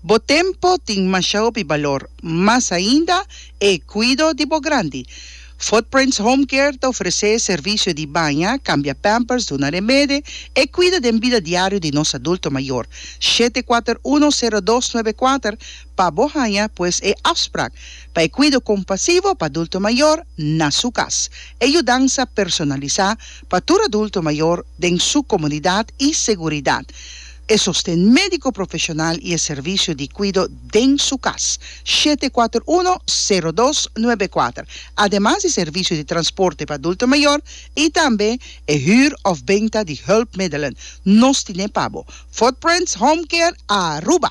Bo tempo tin masha hopi balor, mas ainda e cuido di bo grandi. Footprints Home Care ta ofrece servicio di baña, cambia pampers, duna remede, e cuida den bida diario di nos adulto mayor. Shete kuater uno sero dos nuebe kuater pa bo haña pues e afsprak pa e cuido compasivo pa adulto mayor na su cas. E yudansa personalisa pa tur adulto mayor den su comunidad y seguridad. E sosten médiko profeshonal i e servisio di kuido den su kas, shete kuater uno, sero dos, nuebe kuater, ademas di servisio di transporte pa adulto mayor i tambe e hür òf benta di hùlpmiddelen, nos tin'é pa bo, Footprints Home Care Aruba.